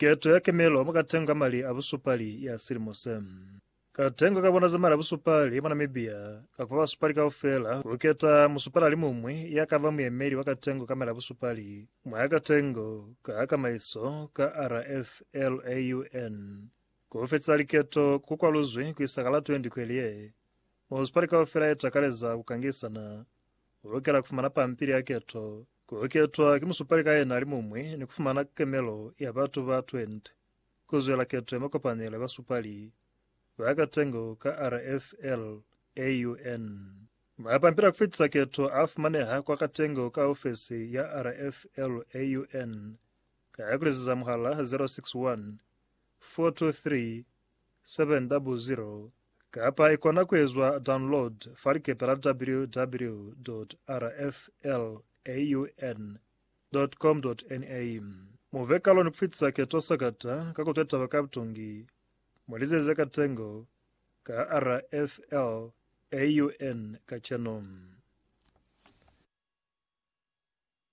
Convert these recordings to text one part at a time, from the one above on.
Keto ya kemelo mwa katengo ka mali a busupali ya silimo se. Katengo ka bona za mali a busupali mwa Namibia ka kupa basupali kaufela ku keta musupali alimuñwi ya ka ba muyemeli wa katengo ka mali a busupali mwa katengo ka kamaiso ka RFLAUN. Ku fetisa liketo ku kwaluzwi ku isa ka la 20 kweli ye. Musupali kaufela ye takaleza ku kangisana u lukela ku fumana pampili ya keto Ku ketwa ki musupali ka yena alimuñwi ni ku fumana kemelo ya batu ba 20 ku zwela keto ya makopanelo ya basupali ba katengo ka RFL AUN. Mapampila a ku fitisa keto a fumaneha kwa katengo ka ofesi ya RFL AUN ka ku lizeza muhala 061 423 700 kapa i kona ku ezwa download fa likepe la www.rflaun.com.na. Mu be kalo ni ku fitisa keto sakata ka ku twa taba ka butungi mwa lize ze ka tengo ka RFLAUN kacenu.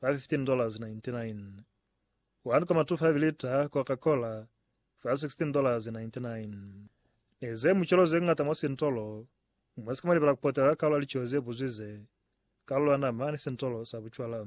fa $15.99, one koma two five lita Coca Cola fa $16.99, ni ze mucelo ze ñata mwa sintolo mwa si ka malibela ku potela kalulo ya lico ze buzwi ze, kalulo ya nama ni sintolo sa bucwala.